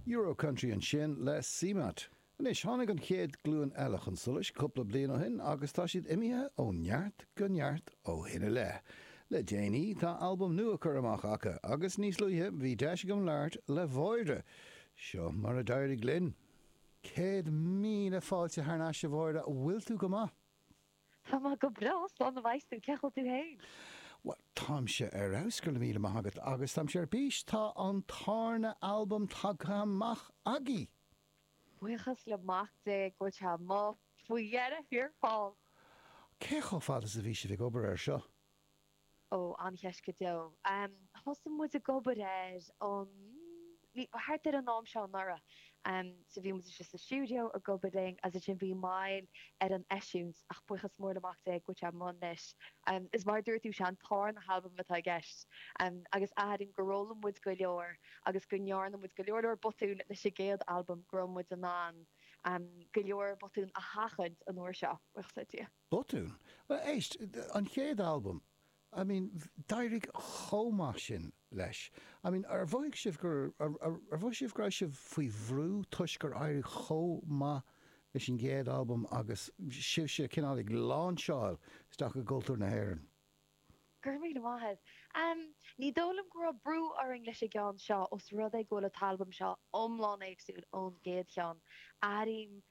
Euro-Country ansin le Seamatt. Anois, tháinig an chéad ghlúin eile chun solais cúpla bliain ó shin agus tá siad imithe ó neart go neart ó shin i leith. Le déanaí, tá albam nua curtha amach acu agus níos luaithe, bhí deis agam labhairt le Máire. Seo mar a d'éirigh linn. Céad míle fáilte thar n-ais a Mháire, an bhfuil tú go maith? Tá mé go breá, slán a bheas tú, cén chaoi a bhfuil tú fhéin? Bhuel, táimse ar fheabhas, go raibh míle maith agat, agus táimse ar bís, tá an tarna halbam tagtha amach agaibh! Buíochas le mac Dé go bhfuil sé amuigh faoi dheireadh thiar thall! Cé chomh fada is a bhí sibh ag obair air seo? Ó, an-cheist go deo. Thosaigh muid ag obair air, um, thart ar an am seo anuraidh. So bhí muid istigh sa stiúideo ag obair linn agus ansin bhí moill ar an eisiúint ach buíochas mór le Mac Dé go bhfuil sé amuigh anois. Is mar a dúirt tú, sé an tarna halbam atá i gceist agus airím gur fhoghlaim muid go leor agus go ndearna muid go leor leor botún leis an gcéad albam go raibh muid in ann go leor botún a sheachaint an uair seo, buíochas le Dia. Botún? Bhuel, éist, an chéad albam, I mean, d'éirigh chomh maith sin leis. I mean, ar mhothaigh sibh go, ar mhothaigh sibh go raibh sibh faoi bhrú toisc gur éirigh chomh maith leis an gcéad albam agus sibhse cineál ag láinseáil isteach i gcultúr na hÉireann? Go raibh míle maith agat. Em, ní dóigh liom go raibh brú orainn leis an gceann seo, os rud é go bhfuil an t-albam seo iomlán éagsúil ón gcéad cheann. Airím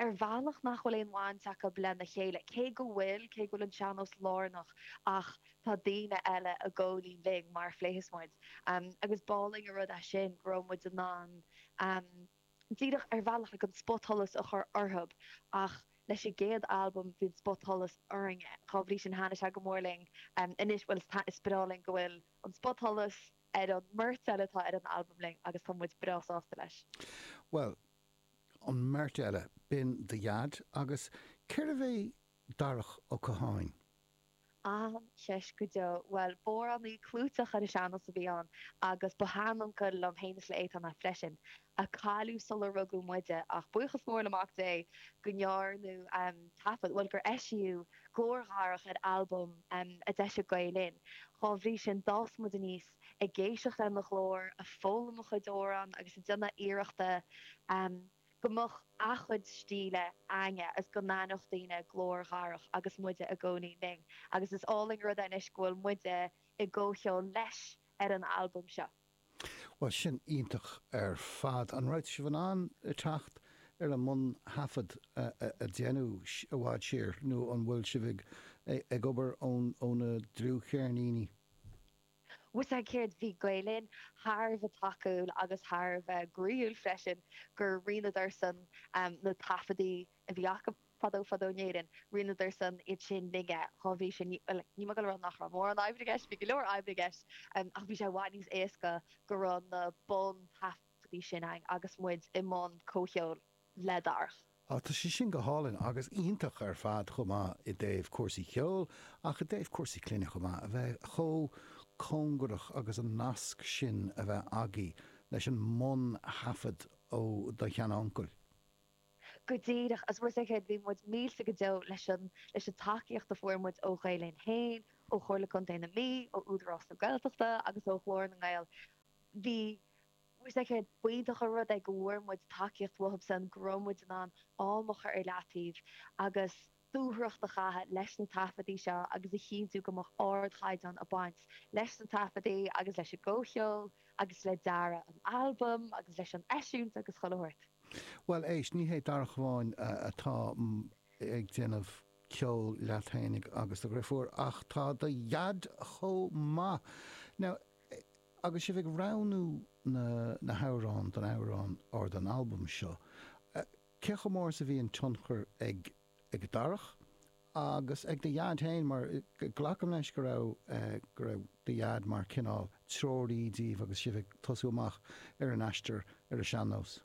ar bhealach nach bhfuil aon bhaint acu lena chéile, cé go bhfuil, cé go bhfuil an sean-nós lárnach ach tá daoine eile i gcomhcheol linn mar a phléifeas muid agus b'álainn an rud é sin go raibh muid in ann díreach ar bhealach like an spotsholas a chur orthu ach leis an gcéad albam bhí an spotsholas orainne, dhá bhrí sin thaitnigh sé go mór linn, anois bhuel is is breá linn go bhfuil an spotsholas ar an mbeirt eile atá ar an albam linn agus tá muid breá sásta leis. Bhuel, an bheirt eile, b'in do Dhaid agus cérbh é Darach Ó Catháin? An-cheist go deo. Bhuel, b'amhránaí clúiteach ar an sean-nós a bhí ann agus ba sheanuncail liom féin is le Étáin é freisin, a cailleadh sular rugadh muide ach buíochas mór le Mac Dé go ndearnadh taifead, bhuel gur eisíodh glór Dharach ar albam a d'eisigh Gael-Linn. Dá bhrí sin, d'fhás muid aníos. ag éisteacht lena ghlór, ag foghlaim a chuid amhrán agus ag déanamh iarrachta go mbeadh a chuid stíle againne agus go n-aithneodh daoine glór Dharach agus muide ag gabháil fhoinn agus is álainn an rud é anois go bhfuil muide i gcomhcheol leis ar an albam seo. Bhuel, sin iontach ar fad. An raibh sibh in ann teacht ar an mbuntaifead a déanadh i bhfad siar nó an bhfuil sibh ag obair ó na dlúthcheirníní? Bhfuil a fhios agat céard, bhí Gael Linn thar a bheith tacúil agus thar a bheith groíúil freisin gur roinneadarsan na taifeadaí a bhí acu fadó fadó in Éirinn, roinneadarsan iad sin linne, dhá bhrí sin, bhuel, níl mé ag goil ag rá nach raibh mórán oibre i gceist, bhí go leor oibre i gceist, ach bhí sé i bhfad níos éasca go raibh na bun-taifeadaí sin againn agus muid i mbun comhcheoil. le Darach. Á, tá sé sin go hálainn agus iontach ar fad chomh maith i dtaobh cúrsaí cheoil ach i dtaobh cúrsaí clainne chomh maith, a bheith chomh cóngarach agus an nasc sin a bheith agaibh leis an mbun-thaifead ó do shean-uncail? Go díreach, agus bhfuil a fhios agat céard, bhí muid millte go deo leis an tacaíocht a fuair muid ó Ghael Linn féin, ó Chomhairle Contae na Mí, ó Údarás na Gaeltachta agus ó Ghlór na nGael. Bhfuil a fhios agat céard, b'iontach an rud é go bhfuair muid tacaíocht uathubsan go raibh muid in ann am a chur ar leataobh agus dúthracht a chaitheamh leis na taifeadaí seo agus a chinntiú go mbeadh ardchaighdeán ag baint leis na taifeadaí agus leis an gcomhcheol agus le dearadh an albaim agus leis an eisiúint agus chuile shórt. Bhuel, éist, ní hé Darach amháin atá ag déanamh ceoil leat fhéinig agus do dhriofúr ach tá do dhaid chomh maith! Now, Agus sibh ag roghnú na na hamhráin don amhrán or don albam seo, cé chomh mór is a bhí an tionchar ag ag Darach agus ag do dhaid féin mar glacaim leis go raibh go raibh do dhaid mar cineál treoraí díbh agus sibh ag tosú amach ar an aistear ar an sean-nós?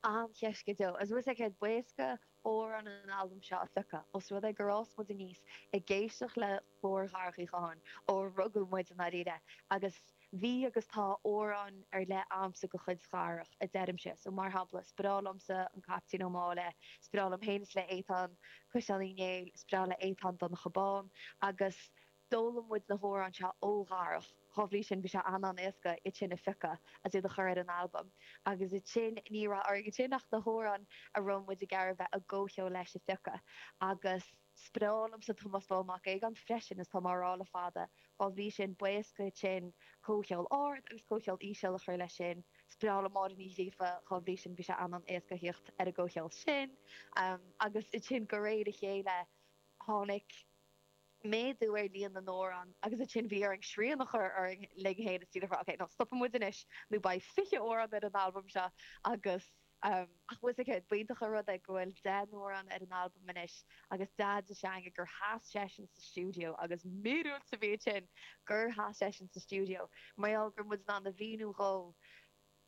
An-cheist go deo. Agus bhfuil a fhios agat céard, b'éasca amhráin an albaim seo a phiocadh, os rud é gur fhás muid aníos ag éisteacht le glór Dharach Uí Chatháin, ó rugadh muid i ndáiríre, agus bhí agus tá amhráin ar leith a'msa de chuid Dharach, a deirimse. So, mar shampla, is breá liomsa An Caiptín Ó Máille, is breá liom féin is le Étáin, Caisleán Uí Néill, is breá le Étáin Donncha Bán, agus. D'fhoghlaim muid na hamhráin seo ó Dharach, dhá bhrí sin bhí sé an-an-éasca iad sin a phiocadh agus iad a chur ar an albam. Agus ansin, ní raibh orainn ansin ach na hamhráin a raibh muid ag iarraidh bheith i gcomhcheol leis a phiocadh. Agus is breá liomsa Tomás Bán Mac Aogáin freisin, is tá mé á rá le fada, dhá bhrí sin b'éasca ansin comhcheol ard agus comhcheol íseal, a chur leis sin. Is breá liom Máire Ní Ghríofa, dhá bhrí sin bhí sé an-an-éasca thíocht ar an gcomhcheol sin. Agus ansin de réir a chéile, tháinig. méadú ar líon na n-amhrán agus ansin bhí orainn srian a chur linn féin istigh le rá OK, no, stopfaidh muid anois nó beidh fiche amhrán ar an albam seo agus ehm, ach bhfuil a fhios agat céard, b'iontach an rud é go bhfuil deich n-amhrán ar an albam anois agus Deaide s'againne gur sheas seisean sa stiúideo agus míorúilt a bhí ansin gur sheas seisean sa stiúideo mar gheall go raibh muid in ann a mhíniú dhó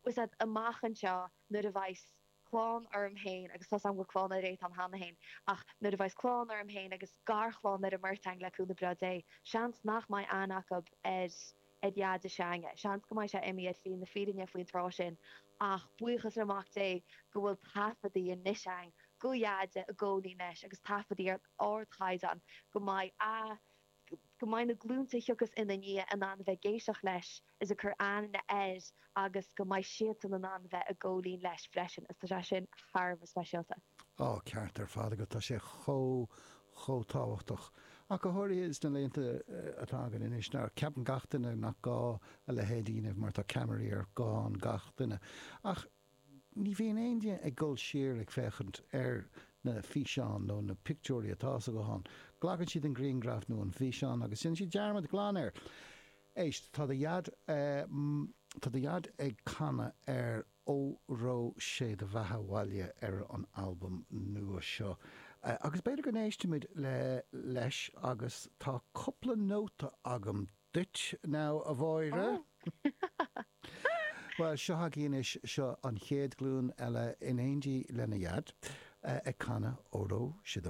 Is ea, amach anseo, nuair a bheas clann orm féin, agus tá 's a'm go raibh clann ag Étáin cheana féin, ach nuair a bheas clann orm féin agus garchlann ar an mbeirt a'inn, le cúnamh breá Dé, seans nach mbeidh aithne acu ar ar Dheaide s'a'inne, seans go mbeidh sé imí ar shlí na fírinne faoin tráth sin, ach buíochas le Mac Dé go bhfuil taifeadaí anois a'inn de Dheaide i gcónaí anois agus taifeadaí ar ardchaighdeán go mbeidh a. go mbeidh na glúnta a thiocfas ina ndiaidh in ann a bheith ag éisteacht leis is ag cur aithne air agus go mbeidh siadsan in ann a bheith ag ceol in éindí leis freisin is tá sé sin thar a bheith speisialta. Á, ceart ar fad agat, tá sé chomh, chomh tábhachtach. Ach go háirithe sna laethanta atá againn anois, nuair a cheapann gach duine nach gá a leithéid a dhéanamh mar tá ceamaraí ar ghuthán gach duine. Ach. Ní bhíonn éinne ag dul siar ag féachaint ar na físeáin nó na pictiúirí atá sa ghuthán. Glacann siad an grianghraf nó an físeán agus déanann siad dearmad glan air. Éist, tá do dhaid, tá do dhaid ag canadh ar 'Óró Sé Do Bheatha Abhaile' ar an albam nua seo agus b'fhéidir go n-éistfimid leis agus tá cupla nóta agam duit now a Mháire. Ó! Bhuel, seo agaí anois, seo an chéad ghlúin eile in éindí lena Dhaid, ag canadh Óró, Sé do Bhea